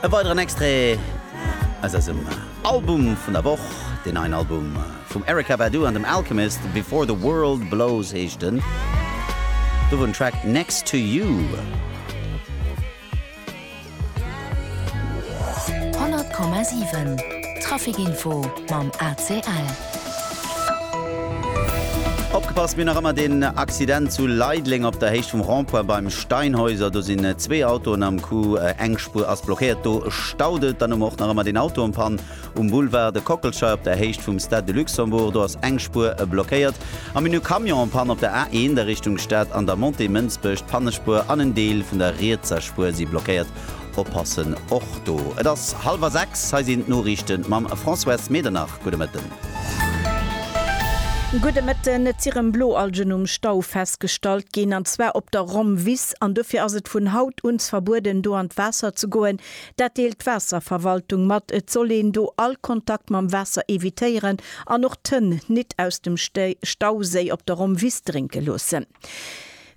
E weideren Extrait aus eisem Album vun der Woch, deen neien Album vum Erykah Badu an dem Alchemist, Before the World Blows heescht en. Do wor den Track Next to You. 100,7 Traffic Info mam ACL. Opgepasst, mir nach ëmmer deen Accident zu Leideleng op der Héicht vum Rond-point beim Steinhäuser. Do sinn zwee Autoen am Coup, eng Spuer ass blockéiert, do staut et. Dann hu mer och nach ëmmer deen Auto en Panne um Boulevard de Kockelschei op der Héicht vum Stade de Luxembourg. Do ass eng Spuer blockéiert. A mir hunn e Camion en Panne op der A1 a Richtung Stad an der Montée Mënsbech. D'Pannespuer an en Deel vun der rietser Spuer si blockéiert. oppassen och do. Et ass hallwer sechs, hei sinn d'Noriichten mam Françoise Medernach. Gudde Mëtten. Gudde Mëtten. Et si rëm Bloalgen um Stau festgestallt ginn, an zwar op der Rhomwiss, an dofir ass et vun haut uns verbueden do an d'Waasser ze goen. Dat deelt d'Waasserverwaltung mat. Et soll een do all Kontakt mam Waasser evitéieren an och d'Hënn nit aus dem Stauséi op der Rhomwiss drénke loossen.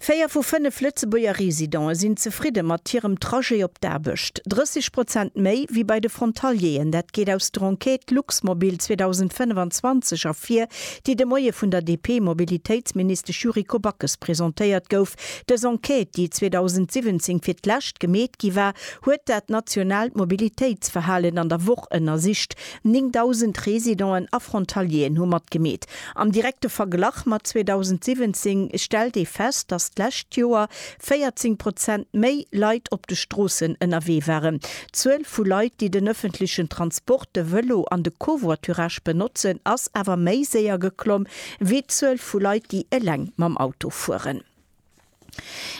Véier vu fënnef Lëtzebuerger Residente sinn zefridde mat hirem Trajet op d'Aarbecht. 30 Prozent méi wéi bei de Frontalieren. Dat geet aus der Enquête Luxmobil 2025 ervir, déi de Moie vun der DP-Mobilitéitsministesch Yuriko Backes presentéiert gouf. Dës Enquête, déi 2017 fir d'lescht gemeet gi war, huet dat nationaalt Mobilitéitsverhalen an der Woch ënnersicht. 9.000 Residenten a Frontalieren hu matgemeet. Am direkte Verglach mat 2017 stellt ee fest, datt d'lescht Joer 14 Prozent méi Leit op de Stroossen ënnerwee waren. D'Zuel vu Leit, déi den ëffentlechen Transport, de Vëlo an de Covoiturage benotzen, ass awer méi séier geklomm, wéi d'Zuel vu Leit, déi eleng mam Auto fueren.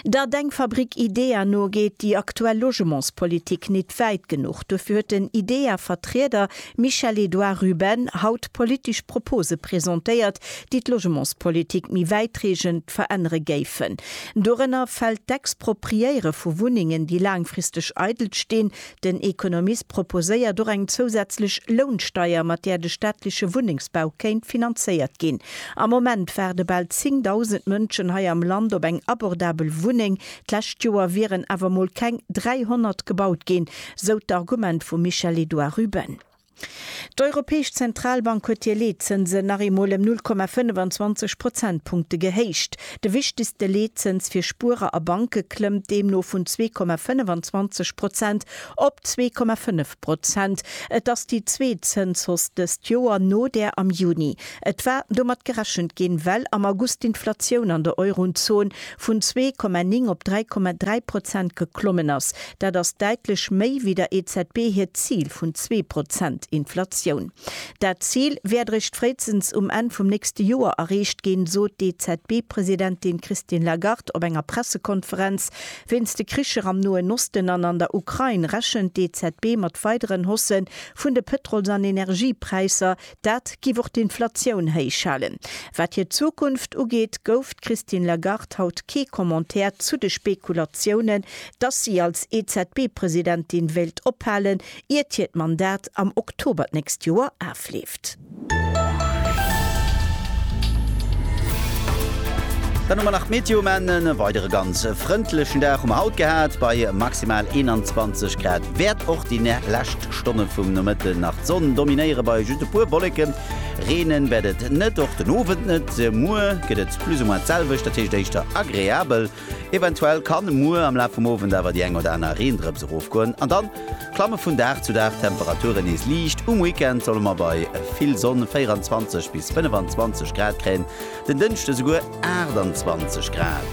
Der Denkfabrik IDEA no geet déi aktuell Logementspolitik nit wäit genuch. Duerfir huet den IDEA-Vertrieder Michel-Edouard Ruben haut politesch Propose presentéiert, déi d'Logementspolitik méi wäitreegend verännere géifen. Dorënner fält d'Expropriéiere vu Wunnengen, déi laangfristeg eidel stinn, Den Economist proposéiert och eng zousätzlech Lounsteier, mat där de staatleche Wunnengsbau kéint finanzéiert ginn. Am Moment waarde bal 10.000 Mënschen hei am Land op eng abordabel Wunneng. D'lescht Joer wieren awer mol keng 300 gebaut ginn, sou d'Argument vum Michel-Edouard Ruben. D'Europäesch Zentralbank huet hir Leetzënsen nach eemol ëm 0,25 Prozentpunkte gehéicht. De wichtegste Leetzëns fir Spuerer a Banke klëmmt deemno vun 2,25 Prozent op 2,5 Prozent. Et ass déi zweet Zënshausse dëst Joer no där am Juni. Et war domat gerechent ginn, well am August d'Inflatioun an der Eurozon vun 2,9 op 3,3 Prozent geklommen ass. Dat ass däitlech méi wéi der EZB hiert Zil vun zwee Prozent Inflatioun. Dat Zil wäert eréischt fréistens um Enn vum nächste Joer erreecht ginn, sot d'EZB-Presidentin Christine Lagarde op enger Pressekonferenz. Wéinst de Kricher am Noen Osten an an der Ukrain rechent d'EZB mat weideren Hausse vun de Pëtrols an Energiepräisser, Dat géif och d'Inflatioun héich halen. Wat hir Zukunft ugeet, gouf d'Christine Lagarde haut kee Commentaire zu de Spekulatiounen, dass si als EZB-Presidentin wéilt ophalen, iert hiert Mandat am Oktober d'nächst Joer afleeft. Dann hu mer nach d'Meteo Mennen. E weidere ganz frëndlechen Dag hu mer haut gehat bei maximal 21 Grad. Wäert och déi lescht. Stonne vum Nomëtte nach d'Sonn dominéiere bei just e puer Wolleken. Reenen wäert et net, och den Owend net. Muer gëtt et plus ou moins d'selwecht, dat heescht éischter agreabel. Eventuell kann muer am Laf vum Owend awer déi eng oder aner Reendrëps erofgoen an dann klamme vun Dag zu Dag d'Temperaturen nees liicht. Um Weekend solle mer bei vill Sonn 24 bis 25 Grad kréien, den Dënschde souguer 28 Grad.